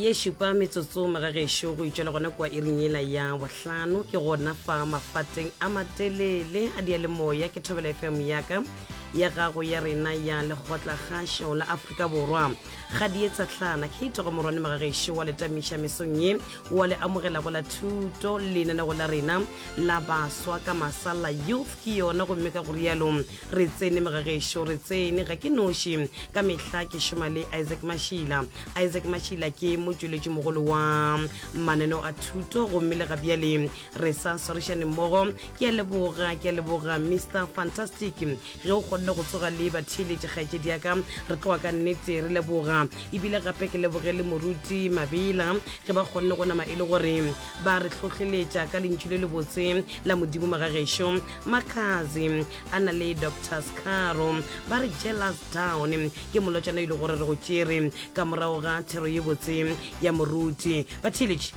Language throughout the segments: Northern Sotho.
ye šupa metsotso moraga gešo go itšwela gona kua iring ela ya bohlano ke gona fa mafateng a matelele a dia le moya ke thobela fm yaka ya gago ya rena ya lekgotla gašo la aforika borwa ga di etsa tlhana ke itogo morwane moraga gešo wa letamiša mesong ye wa le amogela go la thuto lenanego la rena la baswa ka masala youth ke yona gomme ka go rialo re tsene mogagešo re tsene ga ke noši ka mehla ke šoma le isaac mashila isaac mashila ke motšweletši mogolo wa mananeo a thuto gomme le ga bjale re sa swarišane mmogo ke a leboga ke a leboga mr fantastic ge o kgonne go tsoga le batheeletši kgaetšedi ya ka re tloa ka nnete re leboga ebile gape ke leboge le moruti mabela ge ba kgonne go nama e le gore ba re tlhohleletša ka lentšu le lebotse la modimo magagešo makazi a na le dr scaro ba re jealous down ke molotšana ile gore re go tšere ka morago ga thero ye botse ya moruti bathiletši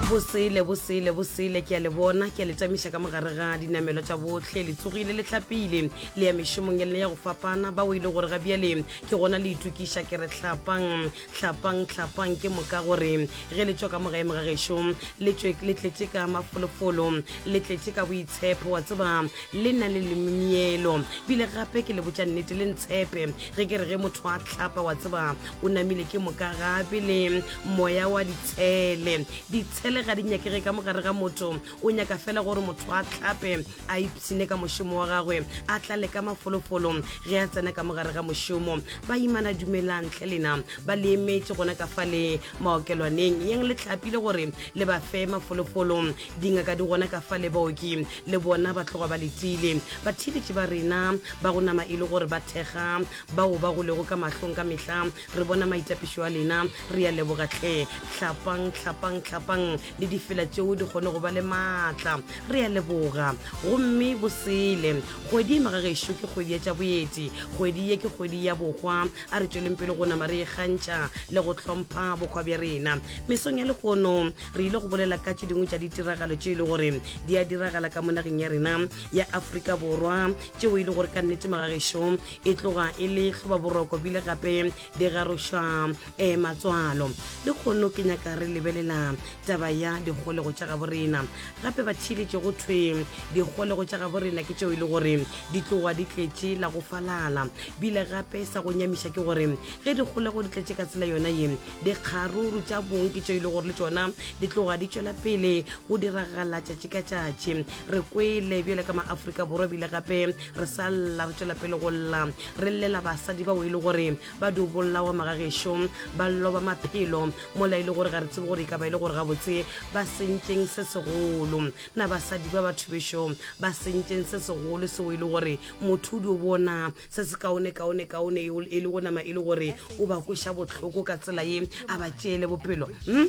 bosele bosele bosele ke a le bona ke a le tamiša ka mogare ga dinamelo tša botlhe le tsogile le tlhapile le ya mešomong ya lena ya go fapana bao e le gore ga bjale ke gona le itokiša ke re tlhapang hlapang hlapang ke moka gore ge le tšwa ka mogaemo ga gešo le tšwe le tletše ka mafolofolo le tletše ka boitshepo wa tseba le na le lemimielo bile gape ke le botša nnete le ntshepe ge ke re ge motho a tlhapa wa tseba o namile ke moka gape le moya wa ditshele ditshele ga di nyakege ka mogare ga motho o nyaka fela gore motho a tlhape a ipshine ka mošomo wa gagwe a tla le ka mafolofolo ge a tsena ka mogare ga mošomo ba imana dumelang tlhe lena ba le emetše gona ka fa le maokelwaneng yeng le tlapile gore le ba fe mafolofolo dingaka di gona ka fa le baoki le bona ba tloga ba letile batheeletše ba rena ba go nama e le gore ba thekga bao ba go lego ka mahlong ka mehla re bona maitapišo a lena re ya leboga tlhe tlhapang tlhapang tlhapang le difela tšeo di kgone go ba le maatla re a leboga gomme bosele kgwedi e magagešo ke kgwedi ya tša boeti kgwedi ye ke kgwedi ya bokgwa a re tšweleng pele go nama re e kgantšha le go hlompha bokgwa bja rena mesong ya lehono re ile go bolela ka tše dingwe tša ditiragalo tše e le gore di a diragala ka mo nageng ya rena ya aforika borwa tšeo e le gore ka nnete magagešo e tloga e le hlobaboroko bile gape di garošwa um matswalo le kgono ke nyaka re lebelela taba ya dikgolego tša gabo rena gape ba theeletše go thwe dikgolego tša gabo rena ke tšeo e le gore di tloga di tletše la go falala bile gape sa go nyamiša ke gore ge dikgolego di tletše ka tsela yona ye dikgaruru tša bong ke tšeo e le gore le tšona di tloga di tšwela pele go diragala tšatši ka tšatši re kwele bjale ka maaforika borwa bile gape re sa lla re tšwela pele go lla re llela basadi bao e le gore ba di bolawa magagešo ba loba maphelo mola e le gore ga re tsebe gore e ka ba e le gore gabotse ba sentšeng se segolo na basadi ba batho bešo ba sentšeng se segolo seo e le gore motho o di o bona se se kaone kaone kaone e le go nama e le gore o ba kweša bohloko ka tsela ye a ba tšeele bopelo hmm?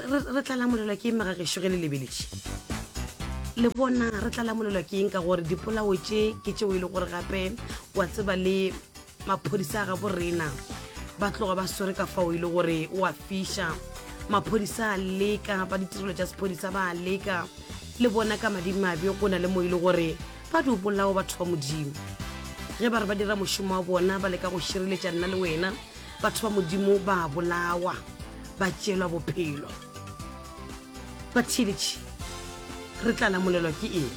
re tla lamolelwa ke eng mega gešo ge le lebeletše le bona re tla lamolelwa ke eng ka gore dipolao tše ke tšeo e le gore gape wa tseba le maphodisa a ga borena ba tloga ba swere ka fao e le gore wa fiša maphodisa a leka ba ditirelo tša sephodisa ba leka le bona ka madimabe go na le mo e le gore ba di bolao batho ba modimo ge ba re ba dira mošomo wa bona ba leka go šireletša nna le wena batho ba modimo ba bolawa ba tšelwa bophelo batheeletši re tla lamolelwa ke eng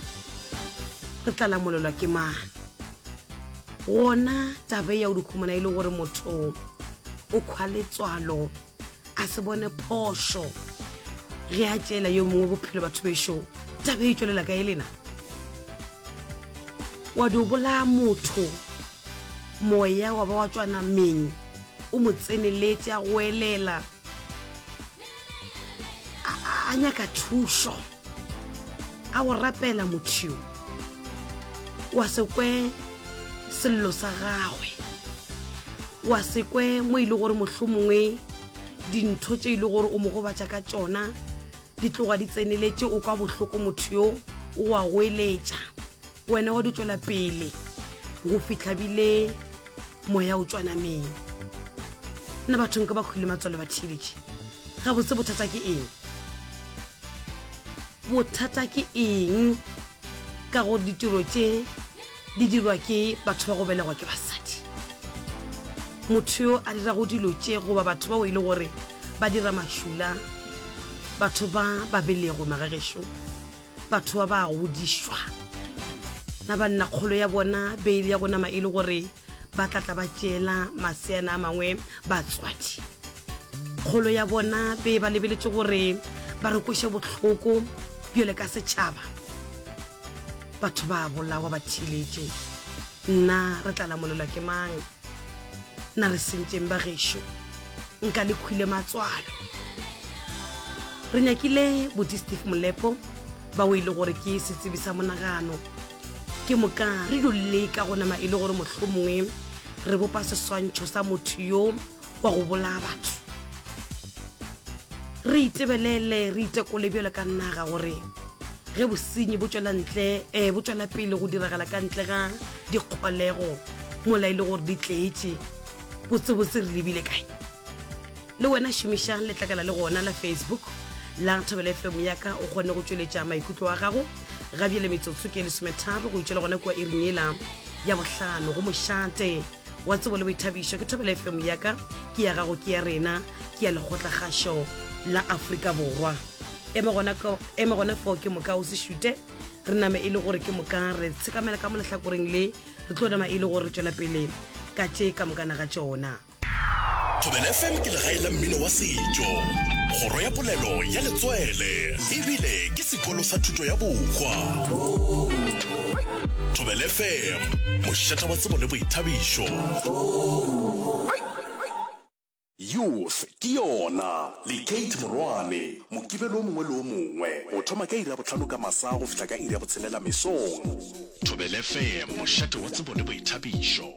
re tla lamolelwa ke mang gona tabe ya o dikhumana e le gore motho o kgwa letswalo a se bone phošo ge a tšeela yo mongwe bophelo batho bešo tabe e tšwelela ka e lena wa di o bolaya motho moya wa ba wa tswana meng o mo tseneletse a go elela a nyaka thušo a go rapela motho yo wa se kwe sello sa gagwe wa se kwe mo e le gore motlho mongwe dintho tše e le gore o mo gobatša ka tšona di tloga di tseneletše o kwa bohloko motho yo o a goeletša wena wa di tswela pele go fitlha bile moya o tswanameng nna bathong ka ba kgwile matswalo ba thibetše ga botse bothata ke eng bothata ke eng ka go ditiro tše di dirwa ke batho ba go belegwa ke basadi motho yo a dirago dilo tše goba batho bao e le gore ba dira mašula batho ba ba belegwe magagešo batho ba ba godišwa na ba nna kgolo ya bona beile ya go nama e le gore ba tla tla ba tšeela maseana a mangwe batswadi kgolo ya bona be ba lebeletše gore ba re kweše bohloko bjole ka setšhaba batho ba bolawa ba thiletše nna re tla lamolelwa ke mang Na re sentseng ba gešo nka le khwile matswalo re nyakile boti steve molepo ba o e le gore ke setsebi sa monagano ke moka re dulele ka go nama e le gore mohlomongwe re bopa seswantšho sa motho yo wa go bolaya batho re itebelele re itekole bjalo ka naga gore ge bosenyi bo tswela ntle um bo tswela pele go diragala ka ntle ga dikgolego mola e le gore di tletše botsebotse re lebile kae le wena šomišang letlakala le gona la facebook la thobele fm yaka o kgone go tšweletša maikutlo wa gago ga bjele metsotso ke lesometharo go itšwela gona kua iring ela ya bohlano go mošate wa tsebo le boithabišo ke thobela fm ya ka ke ya gago ke ya rena ke ya lekgotlakgašo la aforika borwa eme gona foo ke moka o se šute re name e le gore ke moka re tshekamela ka mo lehlakoreng le re tlo nama e le gore re tšwela pele ka tše ka mokana ga tšona thobela fm ke legae la mmino wa setšo kgoro ya polelo ya letswele ebile ke sekolo sa thuto ya bokgwa Thobele FM, mošeta wa tsebo le boithabišo. Youth ke yona le Kate Morwane, Mokibelo o mongwe le o mongwe go thoma ka iri ya bohlano ka masa go fihla ka iri ya botshelela mesong. Thobele FM, mošate wa tsebo le boithabišo.